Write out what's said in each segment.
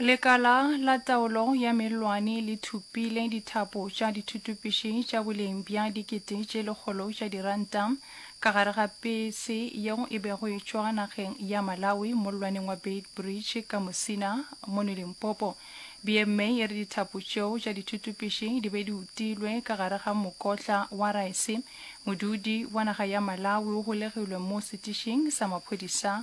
Lekala la taolo ya mellwane le thupile dithapo tša dithutupši tša boleng bja dikete tše lekgolo tša diranta ka gare ga pese yeo e bego e tšwa nageng ya Malawi mollwaneng wa Beitbridge ka Musina mono Limpopo. BMA e re dithapo tšeo tša dithutupši di be di utilwe ka gare ga mokotla wa raese. Modudi wa naga ya Malawi o golegilwe mo setišing sa maphodisa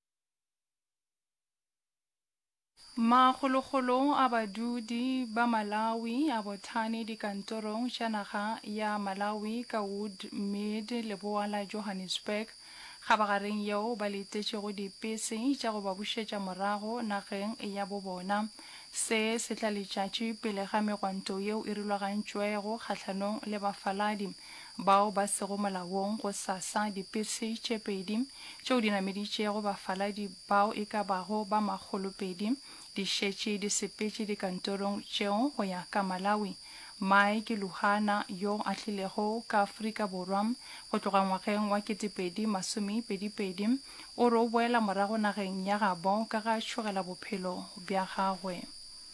Makgolokgolo a badudi ba Malawi a bothane dikantorong tša naga ya Malawi ka Wood Mead leboa la Johannesburg, kgabagareng yeo ba letetšego dipese tša go ba bušetša morago nageng ya bo bona. Se se tla letšatši pele ga megwanto yeo e rulagantšwego kgahlanong le bafaladi. bao ba sego molaong gosasa, dipese tše pedi tšeo di nameditšego bafaladi bao e ka bago ba makgolo pedi di šetše di sepetše dikantorong tšeo go ya ka Malawi. Mae ke Luhana yo a tlilego ka Afrika Borwa go tloga ngwageng wa ketepedi masomepedipedi, o re o boela morago nageng ya gabo ka ga tšhogela bophelo bja gagwe.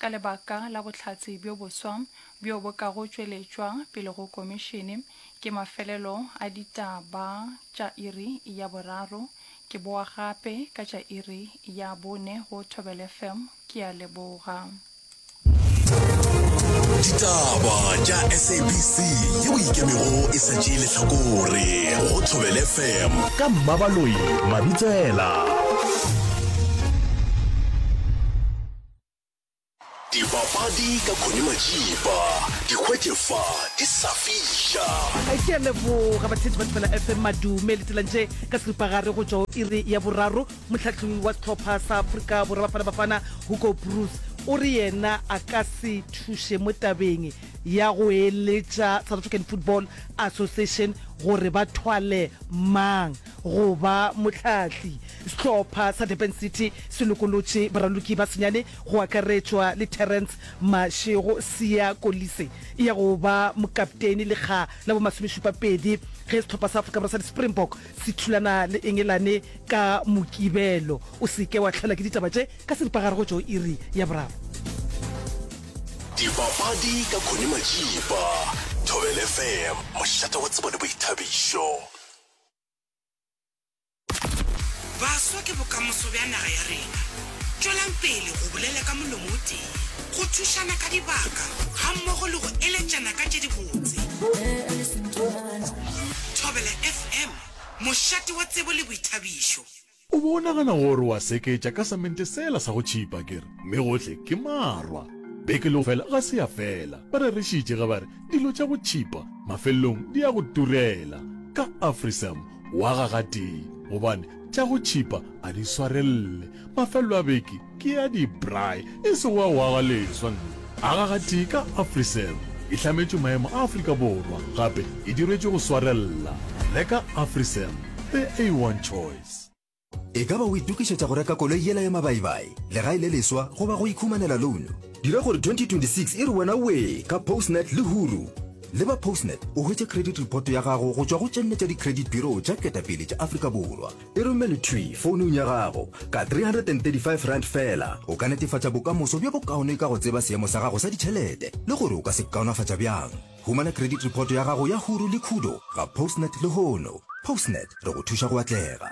ka lebaka la bohlatse bjo boswa bjo bo kago tšweletšwa pele go Komišene ke mafelelo a ditaba tša iri ya boraro. Ke boa gape ka tša iri ya bone go Thobel FM. Ke a leboga. Ditaba tša SABC yeo e ikemego e sa tšee lehlakore go Thobel FM ka Mmabaloi Mabitsela. Dipapadi ka Connie Majiba di hwetše fa di sa fiša. ke a leboga batheetši ba thibela fm madume le tselantše ka seripagare go tšwa o iri ya boraro motlhahloi wa setlhopha sa aforika borwa bafana bafana hugo bruce o re yena a ka se thuše mo tabeng ya go eletša south african football association gore ba thwale mang Go ba mohlahli, sehlopha sa Durban City se lokolotše baraloki ba senyane go akaretšwa le Terrence Mashego, Siya Kolisi ya go ba mokapteini lekga la bo-masomešupapedi ge sehlopha sa Afrika Borwa sa di-Springbok se thulana le Engelane ka Mokibelo. O se ke wa hlaelwa ke ditaba tše ka seripagare go tšwa go iri ya boraro. Dipapadi ka Connie Majiba, Thobela FM, mošate wa tsebo le boithabišo. Baswa ke bokamoso bja naga ya rena. Tšwelang pele go bolela ka molomo o tee, go thušana ka dibaka gammogo le go eletšana ka tše dibotse. Thobela FM, mošate wa tsebo le boithabišo. O be o nagana gore wa seketša ka samente sela sa go tšhipa, ke re, mme gohle ke marwa. Beke leo fela ga se ya fela, ba rerišitše ge ba re, Dilo tša go tšhipa mafelelong di ya go turela. Ka Afrisam o aga gatee, gobane tša go tšhipa a di swarelele. Mafelelo a beke Ke ya di-braai e sego wa go aga leswa nna. Aga gatee ka Afriserv e hlametšwe maemo a Afrika Borwa gape e dirwetšwe go swarella. Reka Afriserv, the A1 choice. E ka ba o itokišetša go reka koloi yela ya mabaibai, legae le leswa goba go ikhumanela louno? Dira gore 2026 e re wena wee ka Postnet le Huru! Le ba Postnet o hwetše credit report ya gago go tšwa go tše nne tša di-credit bureau tša ketapele tša Afrika Borwa. E romele thwi founung ya gago. Ka R335 fela, o ka netefatša bokamoso bjo bokaone ka go tseba seemo sa gago sa ditšhelete le gore o ka se kaonafatša bjang. Humana credit report ya gago ya huru le khudo ga Postnet lehono. Postnet, re go thuša go atlega.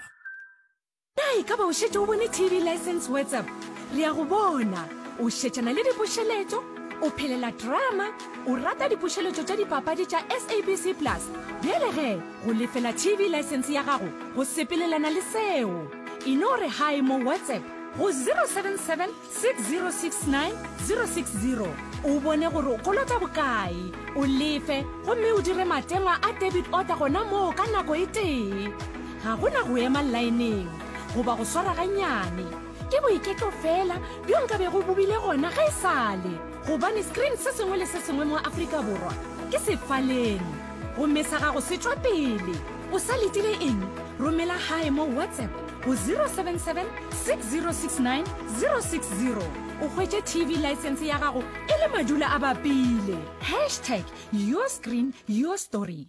Na e ka ba o šetše o bone TV Licence WhatsApp? Re a go bona o šetšana le dipušeletšo, o phelela drama, o rata dipušeletšo tša dipapadi tša SABC Plus. Bjale ge. Go lefela TV license ya gago go sepelelana le seo. E no re hi mo WhatsApp go 077 6069 060 o bone gore o kolota bokae, o lefe gomme o dire matengwa a debit order gona moo ka nako e tee. Ga go na go ema laeneng goba go swara ganyane. Ke boiketlo feela bjo nka bego bo bile gona ge e sale. Gobane screen se sengwe le se sengwe mo Afrika Borwa ke sefaleng. Gomme sa gago se tšwa pele. O sa letile eng? Romela gae mo WhatsApp go 077 6069 060 o hwetše TV license ya gago e le madula a bapile. Hashtag your screen, your story.